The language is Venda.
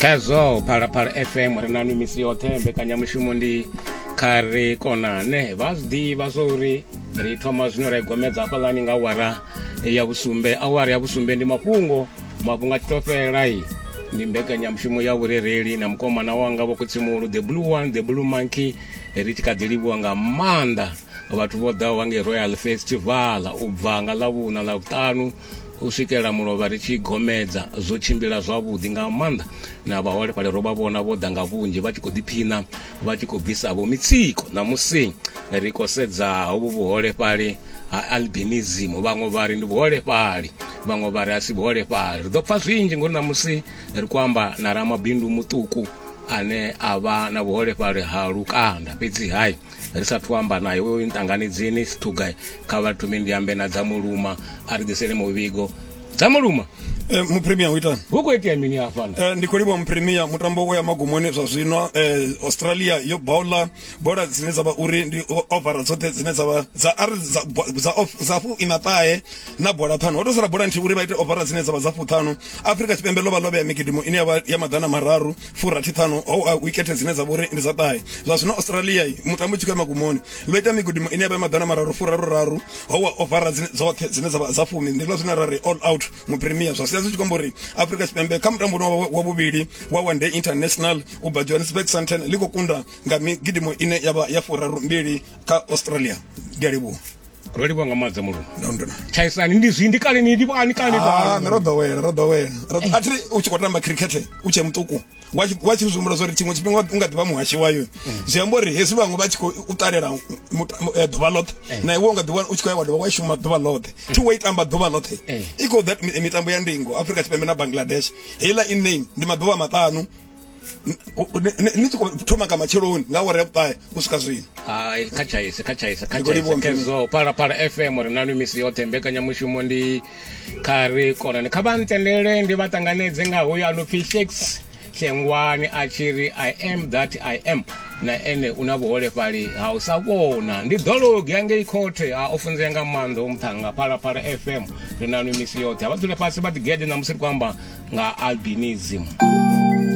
khazwo phalaphala fm ri nanu misi yoṱhe mbekanyamushumo ndi kha ri konane vha zwi ḓivha zwa uri ri thoma zwino ra igomedza hafhaḽani nga awara ya vhusumbe awara ya vhusumbe ndi mafhungo mafhungo a tshi tou fhelai ndi mbekanyamushumo ya vhurereli na mukomana wanga vho kutsimulu the blue one the blue monkey ri tshi kha ḓi livhuwa nga maanḓa vhathu vho ḓaho vha ngei royal festival u bva nga ḽavhuṋa ḽa vhuṱanu u swikela mulovha ri tshi gomedza zwo tshimbila zwavhuḓi nga maanḓa na vhaholefhali ro vha vhona vho ḓa nga vhunzhi vha tshi khou ḓiphiṋa vha tshi khou bvisa vho mitsiko ṋamusi ri khou sedza hovhu vhuholefhali ha albinism vhaṅwe vha ri ndi vhuholefhali vhaṅwe vha ri a si vhuholefhali ri ḓo pfha zwinzhi ngori ṋamusi ri khou amba na ramabindu muṱuku ane a vha na vhuholefhali ha lukanda fhedzi hai ri sa thu amba naye uyo nṱanganidzini sithuga kha vha thome ndi ambe na dza muluma a ri ḓisele muvhigo dza muluma Eh, mupremia u itani hu khou itea mini hafhano Eh, ndi khou livhuwa mupremia mutambo u ya magumoni zwa zwino eh, australia yo bowla bola dzine dza vha uri ndi o- ovara dzoṱhe dzine dza vha dza ari dza bo- dza of- dza fu ina ṱahe na bola ṱhanu ho to sala bola nthihi uri vha ite ovara dzine dza vha dza fuṱhanu afrika tshipembe ḽo vha ḽo vhea migidimu ine ya vha ya maḓana mararu furathi ṱhanu ho a wikethe dzine dza vhori ndi dza ṱahe zwa zwino australia mutambo tshi khou ya magumoni vha ita migudimo ine ya vha maḓana mararu furaru raru ho wa ovara dzine dzoṱhe dzine dza dza fumi ndi zwine ra ri all out mu premier zwa sia zwi tshi khou amba uri afrika tshipembe kha mutambo wa vhuvhili wa one day international u bva johannesburg santen ḽi khou kunda nga migidimo ine ya vha ya furaru mbili kha australia ndi a livhuwa ro livhuwa nga maanḓa mulungu tshaisani ndi zwi ndi kale ni livhuwa ni kale ah, ro ḓowela ro ḓowela a thi u tshi khou tamba khirikhethe u tshe muṱuku wa tshi zwi humbula zwa uri tshiṅwe tshifhinga u nga ḓivha muhashi wayo mm. zwi amba uri hezwi vhaṅwe vha tshi khou u ṱalela eh, ḓuvha ḽoṱhe eh. na iwe u nga ḓiwa u tshi khou ya wa dovha wa shuma ḓuvha ḽoṱhe mm. thi wa i tamba ḓuvha ḽoṱhe eh. i khou that mitambo ya ndingo afrika tshipembe na bangladesh heiḽa i name ndi maḓuvha maṱanu ni tshi khou thoma nga matsheloni nga awara ya vhuṱahe u swika zwino hai kha tshaise kha tshaise kha tshaise pala pala fm ri nanu misi yoṱhe mbekanyamushumo ndi kha ri konani kha vha ntendele ndi vha ṱanganedze nga hoyo a no pfhi shakes hlengwani a tshi ri i am that i am na ene u na vhuholefhali ha u sa vhona ndi ḓologi angei khothe a o funzea nga maanḓa o muṱhanga phalaphala fm ri nanu misi yoṱhe a vha dzule fhasi vha ḓigede na musi ri khou amba nga albinism